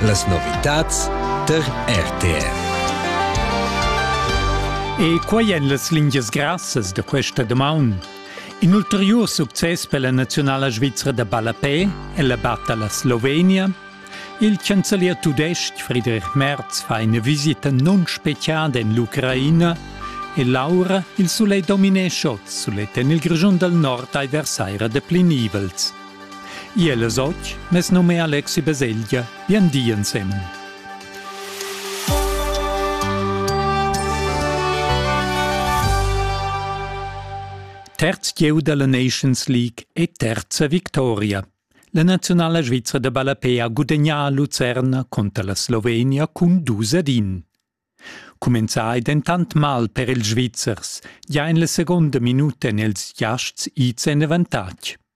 Las novitads tar RTR. E quai èn las lingias grassas da questa damaun. In ulteriur success per la naziunala svizra da ballapè è la batta alla Slovenia. Il chancelier tudestg Friedrich Merz fa ina visita non speciada en l'Ucraina e l'aura il sulegl dominescha oz sulet en il Grischun dal nord ai versaira da plinivels. Iel es och, mes num è Alexi Beseglia, bien di ensemen. Terz gieu della Nations League e terza victoria. La nazionala svizra de ballapé ha gudegnà a Lucerna conter la Slovenia cun 2 ad 1. Cumenzai dentant mal per ils Svizzers, ja in la seconda minuta en els giasts ids en avantatg.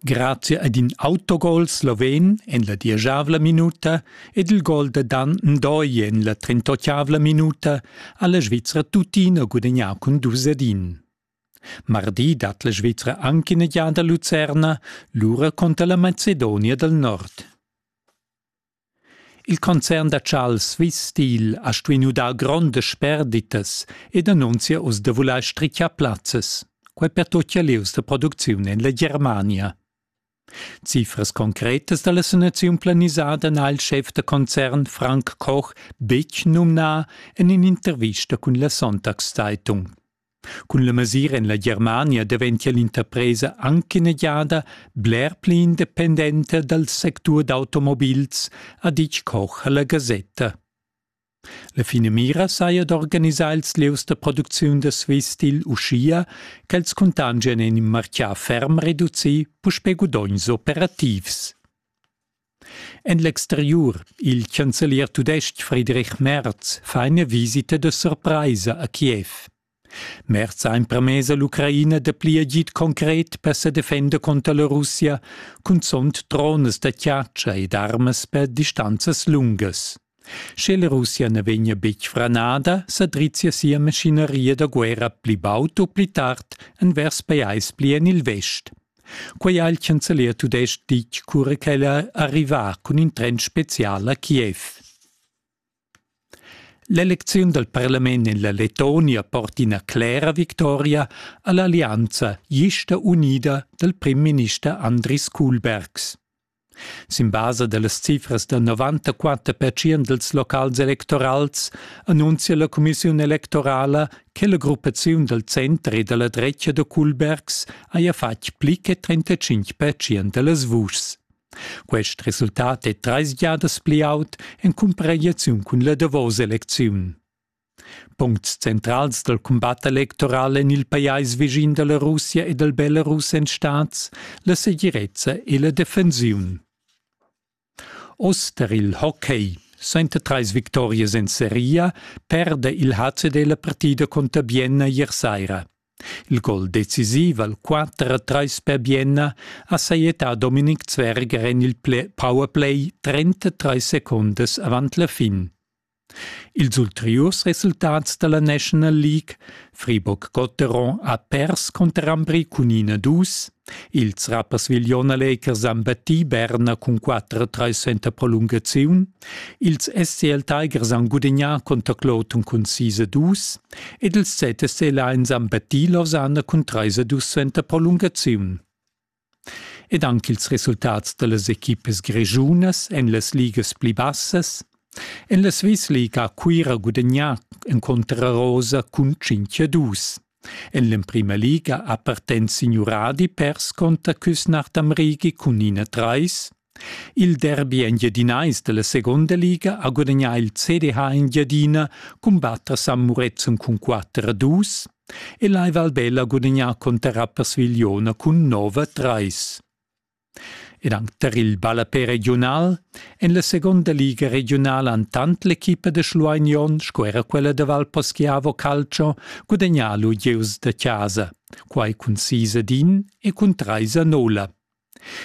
Grazia ad in autogol sloven en la dieschavla minuta ed il gol da Dan Ndoye en la trentotgavla minuta ha la Svizra tuttina gudagnà cun dus ed in. Mardi dat la Svizra anc ina giada Lucerna, lura cunter la Macedonia dal Nord. Il concern da Charles Swiss Steel ha stuì nu dar grondas sperditas ed annunzia oz da vulair strichar plazzas. Quai pertutgia lieus da producziun en la Germania. Cifras concretas da la sanaziun planisada n'ha il schef da concern Frank Koch betg numnà en in'intervista cun la Sonntagszeitung. Cun la mesira en la Germania daventia l'interpresa anc ina giada bler pli independenta dal sectur d'automobils, ha ditg Koch a la gasetta. La finamira saja d'organisar ils lieus da producziun da Swistil uschia ch'els cuntangian en in martgà ferm reducì puspè gudogns operativs. En l'exteriur, il chancelier tudestg Friedrich Merz fa ina visita da surpraisa a Kiev. Merz ha empermess all'Ucraina da pli agid concret per sa defender conter la Russia, cunzont dronas da chatscha ed armas per distanzas lungas. Sche la Russia na vegnia betg franada, sa drizzia sia maschineria da guerra pli baud u pli tard envers pajais pli en il vest. Quai ha il chancelier tudestg ditg cura ch'el è arrivà cun in tren spezial a Kiev. L'elecziun dal parlament en la Letonia porta ina clera victoria a l'allianza gista unida dal prim minister Andris Kuhlbergs. Sin basa dallas cifras da novantaquater pertschient dils locals electorals annunzia la cumissiun electorala che la gruppaziun dal center e dalla dretga da Kulbergs haja fatg pli che 35 pertschient dallas vuschs. Quest resultat è treis giadas pli aut en cumparaziun cun la davosa elecziun. Puncts centrals dal cumbat electoral en il pajais vischin da la Russia e dal Belarus èn stads la segirezza e la defensiun. Oz tar il hockey. Sainta trais victorias en seria perde il HCD la partida conter Bienna ier saira. Il gol decisiv al 4-3 per Bienna ha sajetà Dominik Zwerger en il powerplay 33 secondas avant la fin. Ils ulteriurs resultats dalla National League Fribourg-Gotteron ha pers cunter Ambri cun ina dus. Ils Rapperswil Jona Lakers han battì Berna cun 4-3 suenter prolungaziun. Ils SCL Tigers han gudagnà conter Clouton cun 6-2 ed ils ZSC Lions han battì Lausanne cun 3-2 suenter prolungaziun. Ed anc ils resultats da las equipas grischunas en las ligas pli bassas. En la Swiss-Liga ha Cuira gudagnà encunter Arosa cun 5 a 2. En l'emprima liga ha partent signuradi pers conter Küsnacht am Rigi cun 1 a 3. Il derbi engiadinais dalla Seconda Liga ha gudagnà il CDH Engiadina cumbatt a San Murezzan cun 4 a 2 e l'Ai Valbella ha gudagnà conter Rapperswil-Jona cun 9 a 3. Ed anc tar il ballapè regiunal en la seconda liga regiunala han tant l'equipa da Schlueignon sco era quella da Valposchiavo Calcio gudagnà lu gieus da casa, quai cun 6 ad 1 e cun 3 a 0.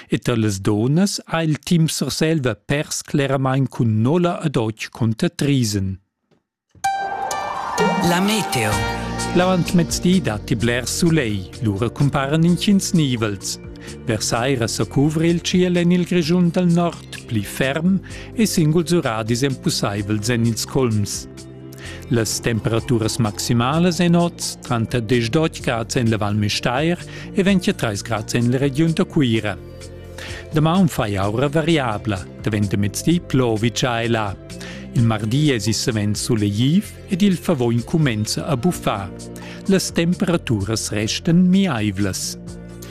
E tar las dunnas ha il team Surselva pers cleramain cun nolla ed otg cunter Triesen. La meteo. L'avantmezdi datti blers sulegl, lura cumparan intgins nivels. Vers saira sa cuvri il ciel en il Grischun dal nord pli ferm e singuls uradis empusaivels en ils culms. Las temperaturas maximalas en oz tranter 10 grads en la Val Müstair e 23 grads en la regiun da Cuira. Damaun fai aura variabla, daventa mezdi plovica e là. Il mardi es il savens suleghiv ed il favò incumenza a buffar. Las temperaturas restan miaivlas.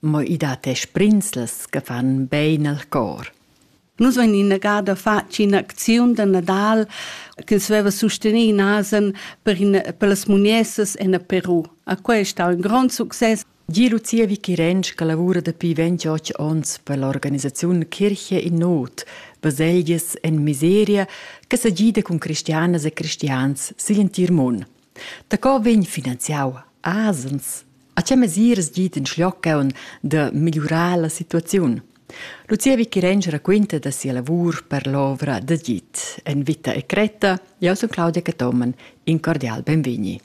Mo i dat e sbrinzlas che fan bein al cor. Nus vein innegada fatg in'acziun da Nadal ch'ins veva sustenì in asen per, in, per las muniessas en Peru. A quest ha un grond success. Gie Lucia Vichirenc che lavura dapi 28 onns per l'organisaziun Kirche in Not, baselgias en miseria, che sa gida cun cristianas e cristians sigl entir mund. Daco vegn finanziau asens? A tgei mesiras git in schlioccaun da migliurar la situaziun? Lucia Vicherenc raquinta da sia lavur per l'ovra da git. En vita e cretta, jeu sun Claudia Cathomen. In cordial benvegni.